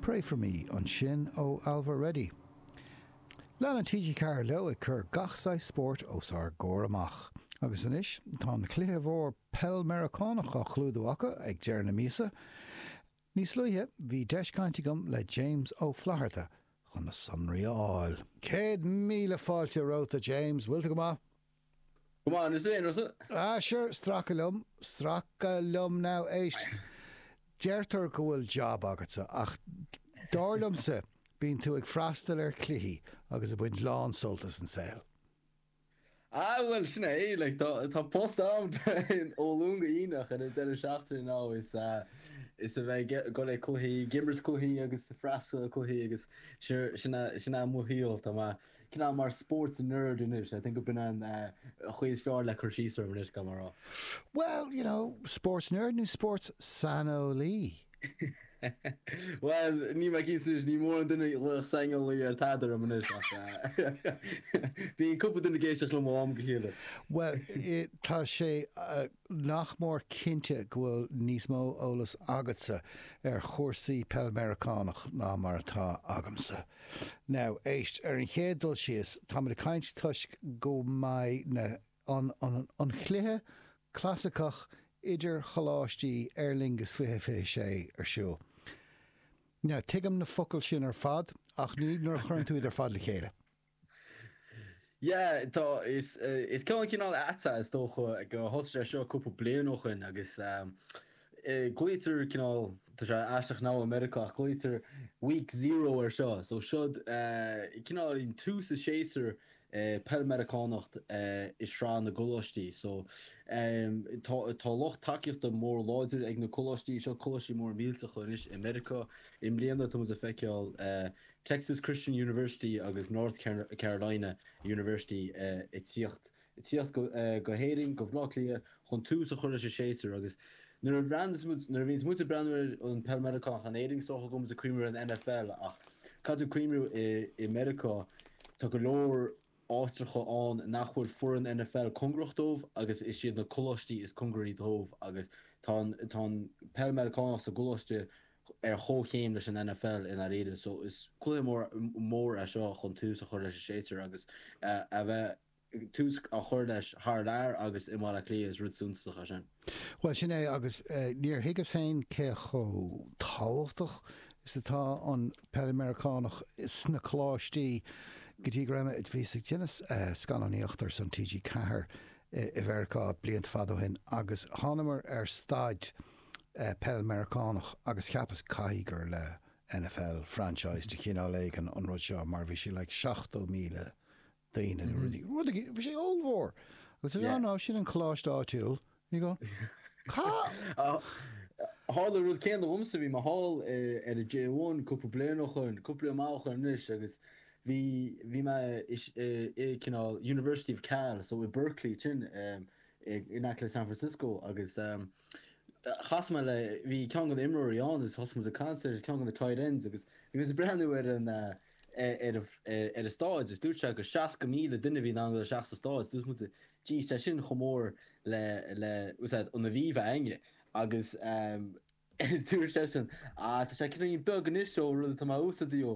Pray for me ansin ó Ailbhe Reddy. Leanann TG4 leo ag cur gach saghas spóirt os ár gcomhair amach. Agus anois tá an cluiche mór peil Meiriceánach á chlúdú acu ag deireadh na míosa. Níos luaithe bhí deis caint agam le James Ó Flatharta chun na sonraí a fháil. Céad míle fáilte romhat a James, bhfuil tú go maith? Go maith. Ah, sure, stracadh liom, stracadh liom. Now, éist, deirtear go bhfuil job agatsa ach dar liomsa, bíonn tú ag freastal ar cluichí agus ag baint lán sult as an saol. Ah, bhuel, sin é, like, tá post a'm ó Luan go hAoine ach an deireadh seachtaine anois is a bheith ag dul ag cluichí, ag imirt cluichí agus ag freastal ar cluichí agus sure, sin é mo shaol, tá mé. Cineál mar sports nerd anois. I think gurb in an chaoi is fearr le cur síos orm anois, cá mbeidh rá? Well, you know, sports nerd nó sports saineolaí? Bhuel, ní mé cinnte anois. Ní mórán duine a ghlaodh saineolaí ar tada orm anois ach bíonn cúpla duine ag éisteacht liom ó am go chéile. Bhuel, tá sé nach mór cinnte go bhfuil níos mó eolas agatsa ar chúrsaí Peil Meiriceánach ná mar atá agamsa. Now, éist, ar an chéad dul síos, táimid ag caint toisc go mbeidh na, an, an, an chluiche clasaiceach idircholáistí Aer Lingus 2026 ar siúl. Now, tuigim na focail sin ar fad ach ní nuair a chuireann tú iad ar fad le chéile. Yeah, tá, is, is ceann cineál atá, is dócha, gur thosaigh sé seo cúpla bliain ó shoin agus glaoitear cineál, tá sé aisteach i Meiriceá ach glaoitear Week Zero ar seo. So seod cineál an tús an séasúr i bPeil Meiriceánach i Sraith na gColáistí. So tá, tá lucht tacaíochta mór láidir ag na coláistí seo, coláistí móra millteacha anois i Meiriceá. I mbliana tá muid ag feiceáil Texas Christian University agus North Carolina University ag tíocht ag tíocht go hÉirinn, go Bleá Cliath, chun tús a chur leis an séasúr agus nuair a bhreathnaíos muid, nuair a bhíonns muid ag breathnú ar an peil Meiriceánach, in Éirinn is dócha go mbeadh muid ag cuimhniú ar an NFL ach caithfidh tú cuimhniú i Meiriceá, tá go leor áitreacha ann nach bhfuil foireann NFL cóngarach dóibh agus is iad na coláistí is cóngaraí dóibh agus tá an peil Meiriceánach sa gcoláiste ar chomhchéim leis an NFL i ndáiríre. So is cluiche mór, mór é seo chun tús a chur leis an séasúr agus a bheith, tús á chur leis thar lear agus i mBaile Átha Cliath is rud suntasach é sin. Bhuel, sin é agus níor thuigeas féin cé chomh tábhachtach is atá an Peil Mheiriceánach sna coláistí go dtí go raibh mé, bhíos ag déanamh scannánaíocht ar son TG4 i Meiriceá blianta fada ó shin agus thánamar ar staid, peil Mheiriceánach agus cheapas, caithfidh gur le NFL franchise de chineál éigin an rud seo mar bhí sé like 70,000 daoine nó rud éigin, bhí sé ollmhór agus yeah, no, sin an coláiste áitiúil and you go cá. Tharla rud céanna domsa, bhí mé thall ar an J1 cúpla bliain ó shin, cúpla bliain maith ó shin anois agus bhí, bhí mé i cineál University of Cal, so i Berkeley ansin in aice le San Francisco agus eh, chas mé le, bhí ceann de na imreoirí ann agus thosaigh muid ag caint ar ceann de na tight ends agus bhí muid ag breathnú ar an, ar an stáid agus dúirt sé gur 60,000 duine a bhí in ann dul isteach sa stáid. Dúirt muid, jeez, tá sin chomh mór le, le, what's that, an Aviva againne agus dúirt seisean, ah, tá sé cineál beag anois ó rud atá mé a' úsáid í ó,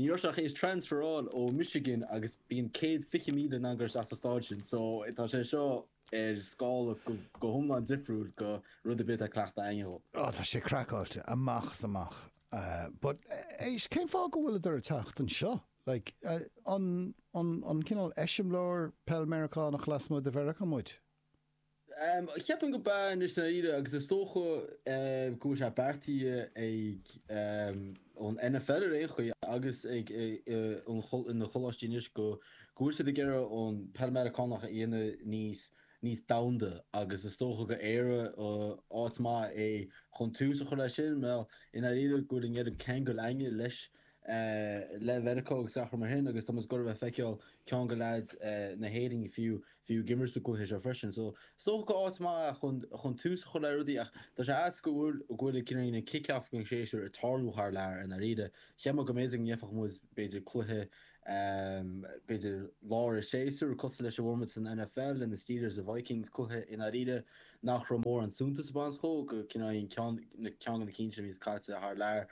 ní raibh sé ach a' transferáil ó Michigan agus bíonn céad fiche míle in ann dul isteach sa stáid sin so tá sé seo, ar scála go hiomlán difriúil ó rud ar bith atá cleachta againne. Ó, tá sé craiceáilte amach is amach. But éist, cén fáth go bhfuileadar ag teacht anseo? Like, an cineál eiseamláir peil Meiriceánach lasmuigh de Mheiriceá muid? Cheapfainn gurb ea anois dáiríre agus is dócha go bhfuil sé beartaithe ag an NFL ar aon chaoi agus ag na coláistí anois go go bhfuil siad ag iarraidh an pheil Mheiriceánach a dhéanamh níos níos domhanda agus is dócha gur Éire áit maith é chun tús a chur leis sin. Mar i ndáiríre go bhfuil an oiread ceangail againne leis le Mheiriceá agus araile mar sin agus tá muid ag gabháil a feiceáil ceann de leaids na hÉirinn fiú fiú ag imirt sa gcluiche seo freisin. So is dócha gur áit maith é chun chun tús a chur le rudaí ach tá sé ait go bhfuil go bhfuil an kick-off den séasúr ag tarlú thar lear i ndáiríre. Cheap mé go mb'fhéidir go ngeobhadh muid b'fhéidir cluiche b'fhéidir lár an tséasúir, cosúil leis an bhformáid san NFL le na Steelers, na Vikings, cluiche i ndáiríre nach raibh mórán suntais a bheas ann, sin go ginearálta ceann de na cinn a bhíos caite thar lear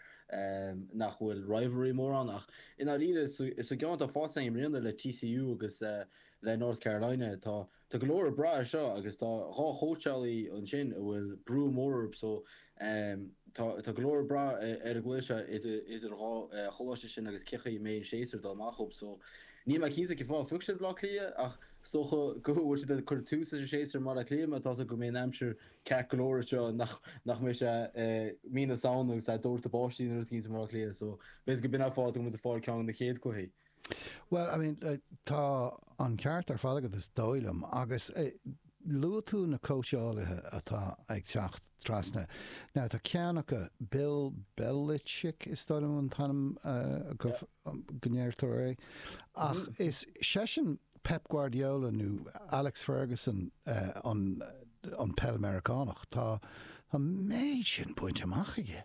nach bhfuil rivalry mór ann ach i ndáiríre sa gceann atá faighte againn i mbliana le TCU agus le North Carolina tá Tá go leor ag brath air seo agus tá dhá chóitseálaí ansin a bhfuil brú mór orthu so tá go leor ag brath ar an gcluiche seo idir dhá choláiste sin agus cé chaoi a mbeidh an séasúr ag dul amach dhób so níl mé cinnte cén fáth a phioc siad Baile Átha Cliath ach is dócha go bhfuil siad ag cur tús leis an séasúr i mBaile Átha Cliath just so go mbeidh an aimsir ceart go leor anseo nach mbeidh sé mí na Samhna agus é ag doirteadh báistí nó rud éigin i mBaile Átha Cliath so b'fhéidir gurb in an fáth go bhfuil siad ag fáil ceann de na chéad cluichí. Bhuel, I mean, tá an ceart ar fad agat is dóigh liom agus luaigh tú na cóitseálaithe atá ag teacht trasna. Now tá ceann acu, Bill Belichick is dóigh liom an chaoi go ndeirtear é, ach is seisean Pep Guardiola nó Alex Ferguson an peil Meiriceánach. Tá an méid sin bainte amach aige.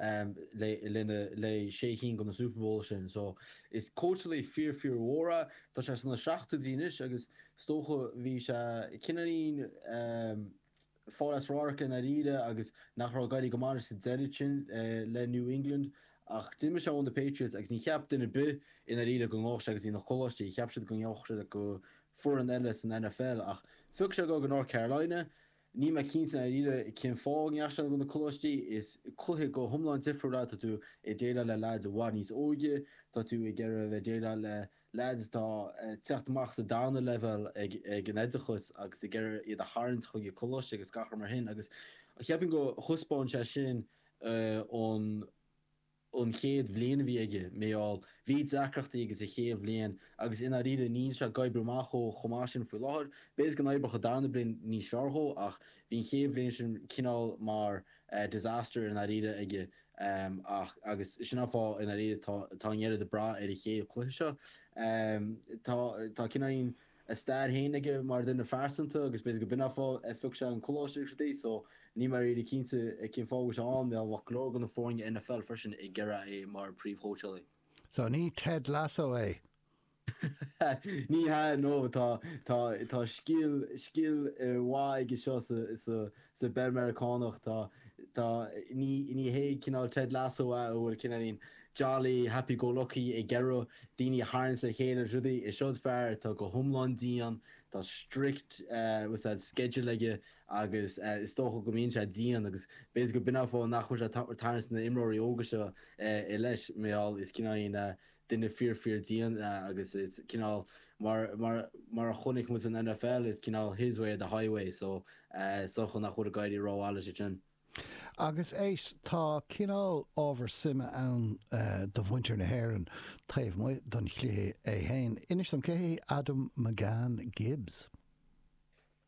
lena leithéid sé cinn de na Super Bowl sin. So, is cóitseálaí fíor fíor mhór é. Tá sé sna seachtóidí anois agus is dócha bhí sé cineáilín ag fáil as radharc i ndairíre agus nach raibh ag éirí go maith leis sa deireadh sin le New England. Ach d'imigh sé ó na Patriots agus ní cheap duine ar bith i ndairíre go ngeobhadh sé ag na coláistí. Cheap siad go ngeobhadh sé go foireann eile san NFL ach phioc sé go North Carolina. Níl mé cinnte i ndáiríre cén fáth a ndeachaigh sé go na coláistí. Is cluiche go hiomlán difriúil é. Tá tú ag déileáil le leaids i bhfad níos óige. Tá tú ag iarraidh a bheith ag déileáil le leaids atá ag teacht amach as an darna leibhéal ag an oideachas agus ag iarraidh iad a tharraingt chuig na coláistí agus gach rud mar sin agus cheapainn go thaispeáin sé sin an an chéad bhliain a bhí aige, mar gheall, bhí deacrachtaí aige sa chéad bhliain agus i ndáiríre níl sé ag oibriú amach chomh chomh maith sin faoi láthair. B'fhéidir go n-oibreodh an darna bliain níos fearr dhó ach bhí an chéad bhliain sin cineál mar disaster i ndáiríre aige ach agus sin an fáth i ndáiríre tá tá an oiread ag brath ar an chéad chluiche seo. Tá tá cineáilín a stair féin aige mar dhuine phearsanta agus b'fhéidir go b'in an fáth ar phioc sé an coláiste so níl mé really cinnte cén fáth a bhfuil sé ann. Bheadh go leor de na foirne NFL freisin ag iarraidh é mar príomhchóitseálaí. So ní Ted Lasso é? Ní hea, no, tá, tá, tá scil, scil mhaith aige seo sa, sa, Sa bpeil Mheiriceánach tá, tá, ní, ní hé cineál Ted Lasso a a bhfuil cineáilín jolly, happy go lucky ag iarraidh daoine a tharraingt le chéile is rudaí, is seod fear atá go hiomlán dian, tá strict, eh, what's that, schedule aige agus eh is dócha go mbíonn sé dian agus b'fhéidir go b'in an fáth nach bhfuil sé ag tarraingt na n-imreoirí óga seo eh i leith, mar gheall is cineáilín eh, duine fíor fíor dian agus is cineál mar mar mar a chonaic muid san NFL is cineál his way or the highway so is dócha nach bhfuil ag éirí ró mhaith leis ansin. Agus éist, tá cineál ábhar suime ann do mhuintir na hÉireann taobh amuigh don chluiche é féin. Inis dom, cé hé Adam McCann-Gibbs?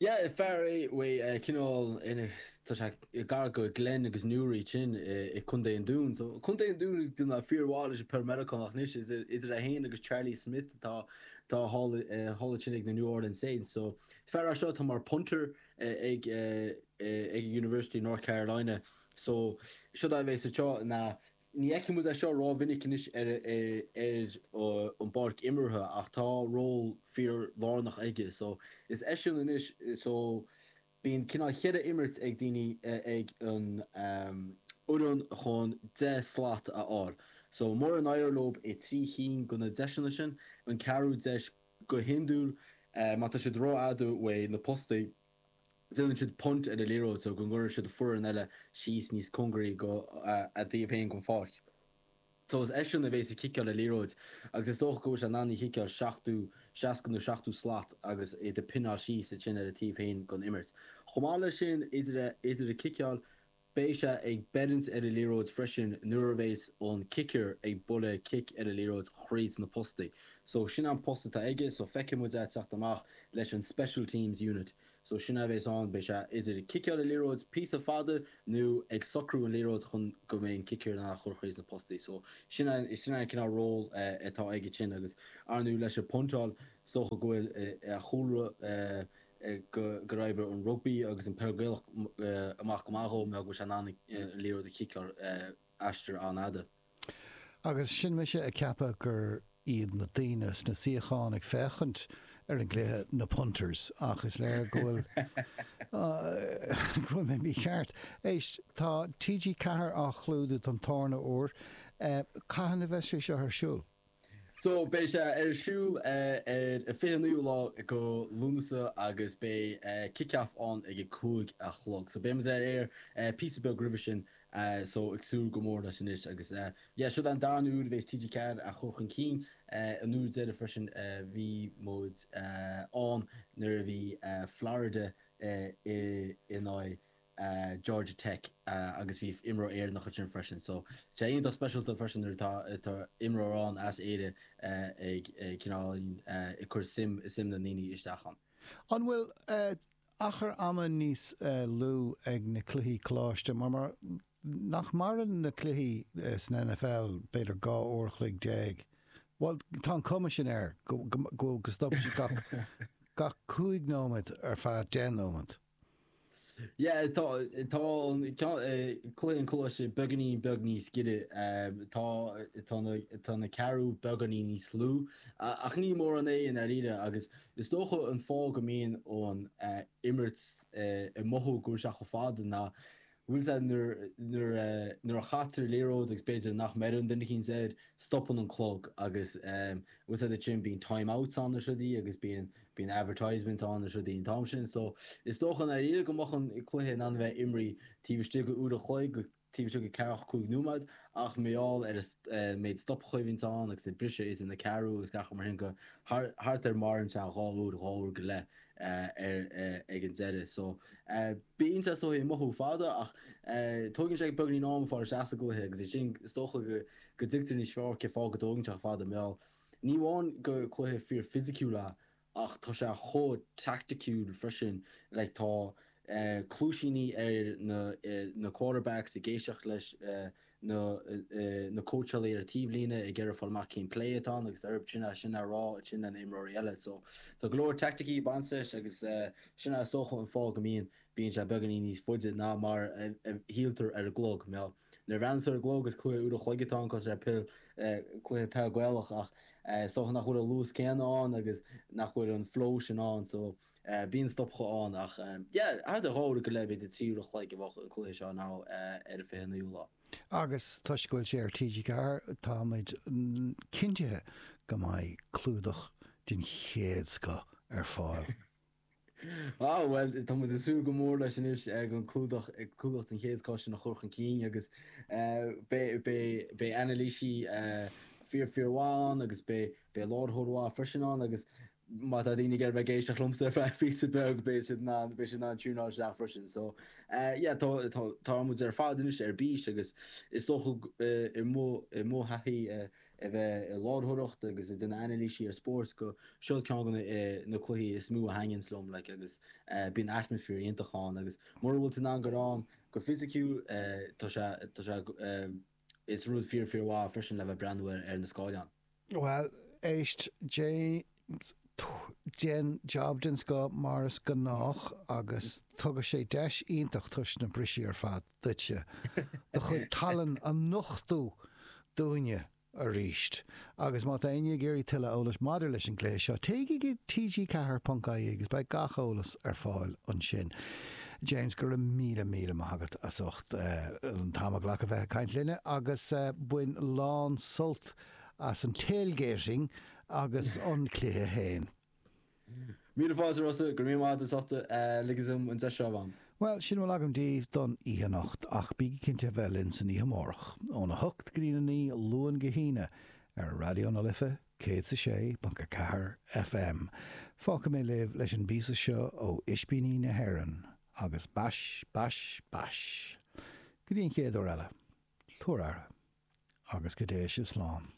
Yeah, is fear é uaidh eh, cineáilín a, tá sé gar go Glen agus Newry sin eh, i Contae an Dún. So Contae an Dún ag déanamh fíor mhaith leis an peil Meiriceánach anois is idir idir é féin agus Charlie Smith atá tá thall eh, thall ansin ag na New Orleans Saints. So is fear as seo tá mar punter eh, ag eh, eh, ag University of North Carolina. So seo dó beidh sé seo na Ní fheicfidh muid é seo rómhinic anois ar an bpáirc imeartha ach tá ról fíor-lárnach aige so is eisean anois so bíonn cineál cheithre imirt ag daoine ag an fhoireann chun deich slat a fháil so mura n-éireoidh leo le trí chinn go na deiseanna sin an ceathrú deis go hiondúil má tá siad rófhada uaidh na postaí déanann siad punt ar an liathróid so go gcuireann siad foireann eile síos níos cóngaraí go a dtaobh féin den pháirc so is eisean a bhéas ag ciceáil an liathróid agus is dócha go bhfuil sé in ann í chiceáil seachtó seasca nó seachtó slat agus iad ag pineáil síos iad sin ar a taobh féin gon imirt. Chomh maith le sin idir a idir a ciceáil Beidh sé ag beirint ar a liathróid freisin nuair a bhéas an kicker ag bualadh cic ar a liathróid thríd na postaí. So sin an post atá aige so feicfidh muid é ag teacht amach leis an special teams unit. So sin é a bhéas ann, beidh sé idir ciceáil a liathróid píosa fada nó ag socrú an liathróid chun go mbeidh an kicker in ann a chur thríd na postaí. So sin é, sin é an cineál ról atá aige sin agus arnú leis an puntáil is dócha go bhfuil a chúlra, go n-oibreoidh an rugbaí agus an peil Gaelach amach go maith dhó, mar go bhfuil sé in ann an liathróid a chiceáil aistear an-fhada. Agus sin mise ag ceapadh gur iad na daoine sna suíocháin ag féachaint ar an gcluiche na punters, ach is léir go bhfuil mé mícheart. Éist, tá TG4 á chlúdú don darna huair. Cathain a bheas sé seo ar siúl? So, beidh sé ar siúl ar an fiche naoú lá go Lúnasa agus beidh kick-off ann ag a cúig a chlog. So, beidh muid ar aer píosa beag roimhe sin. So, ag súil go mór leis anois agus yeah, seo an darna uair a bheas TG4 á chur chun cinn. An uair deireadh freisin a bhí muid ann nuair a bhí Florida in aghaidh. Georgia Tech agus bhí imreoir Éireannach ansin freisin. So tá sé iontach speisialta freisin nuair atá atá imreoir ann as Éire ag cineál ag cur suim suim na ndaoine isteach ann. An bhfuil achar ama níos lú ag na cluichí coláiste mar mar nach maireann na cluichí san NFL b'fhéidir dhá uair a chloig déag? Bhuel tá an cuma sin air go go go go stopann siad gach gach cúig nóiméad ar feadh deich nóiméad. Yeah tá tá an ceann eh, Cluiche an Choláiste beagáinín beag níos giorra, em, tá tá na tá na ceathrú beagáinín níos lú, a- ach ní mórán é i ndáiríre agus is dócha an fáth go mbíonn an eh, imirt eh, ag mothú go bhfuil sé chomh fada ná bhfuil sé nuair a chaitear liathróid agus b'fhéidir nach mbeireann duine eicínt air, stopann an clog agus an bhfuil a fhios agat ansin bíonn time outs ann is rudaí agus bíonn bíonn advertisements ann is rudaí an t-am sin so is dócha i ndáiríre go mbeadh an cluiche in ann a bheith imrí taobh istigh go uair a chloig go taobh istigh go ceathracha cúig nóiméad ach mar gheall ar an méid stoptha a bhíonn ann agus an briseadh idir na ceathrúna agus gach rud mar sin go thart ar maireann sé dhá uair dhá uair go leith ar ag an deireadh. So bíonn sé sórt ag mothú fada ach tógann sé beagáinín am fáil isteach sa gcluiche agus ansin is dócha go dtuigtear níos fearr cé fáth go dtógann sé fada mar ní amháin gur cluiche fíor fisiciúil é ach tá sé chomh teaicticiúil freisin like tá cluaisíní ar na na quarterbacks ag éisteacht leis nó na cóitseálaí ar an taobhlíne ag iarraidh fáil amach cén plé atá ann agus ansin é sin a rá sin lena imreoirí eile so tá go leor teaicticí bainteach leis agus sin a is dócha an fáth go mbíonn bíonn sé beagáinín níos faide ná mar a shíltear ar an gclog nó nuair a bhreathnaítear ar an gclog is cluiche uair an chloig atá ann cosúil le cluiche peil gaelach ach is dócha nach bhfuil an luas céanna ann agus nach bhfuil an flow sin ann so Eh, bíonn stoptha ann ach em yeah thart ar dhó go leith, b'fhéidir de trí uair an chloig a bheadh an cluiche seo now eh ar an 29ú lá. Agus toisc go bhfuil sé ar TG4 tá muid cinntithe go mbeidh clúdach den chéad scoth ar fáil. Ah bhuel tá muid ag súil go mór leis anois eh an clúdach eh clúdach den chéad scoth sin a chur chun cinn agus eh beidh beidh beidh anailísí eh fíor fíor mhaith ann agus beidh beidh láithreoir mhaith freisin ann agus má tá daoine ag iarraidh bheith ag éisteacht liomsa ar feadh píosa beag beidh siad in ann, beidh siad in ann tiúnáil isteach freisin. So eh yeah tá tá tá muid ar fad anois ar bís agus is dócha eh i mo i mo thaithí eh a bheith i láithreoireacht agus ag déanamh anailíse ar spórt go seo ceann go na eh na cluichí is mó a thaitníonns liom like agus eh bíonn atmosphere iontach ann agus mura bhfuil tú in ann goil ann go fisiciúil eh tá sé tá sé eh is rud fíor fíor mhaith freisin le bheith ag breathnú ar na scáileáin. Bhuel, éist, James, déan jab den scoth mar is gnách agus tugann sé deis iontach toisc na bristí ar fad duitse do chuid tallann a nochtú dúinne arís agus má tá éinne ag iarraidh tuilleadh eolais maidir leis an gcluiche seo téigh go TG 4 ponc IE agus beidh gach eolas ar fáil ansin. James, go raibh míle míle maith agat as ucht an t-am a ghlacadh bheith ag caint linne agus bain lán sult as an tailgating agus an cluiche féin. Míle fáilte Rossa, go raibh míle maith agat as ucht ligean dom an deis seo a bheith ann. Bhuel, sin a bhfuil agam daoibh don oíche anocht, ach bígí cinnte a bheith linn istoíche amárach, óna hocht go dtína naoi, Luan go hAoine, ar Raidió na Life 106.4 FM. Fágfaidh mé libh leis an bpíosa seo ó Ispíní na hÉireann. Agus bais, bais, bais. Go dtí an chéad uair eile. Tabhair aire. Agus go dté sibh slán.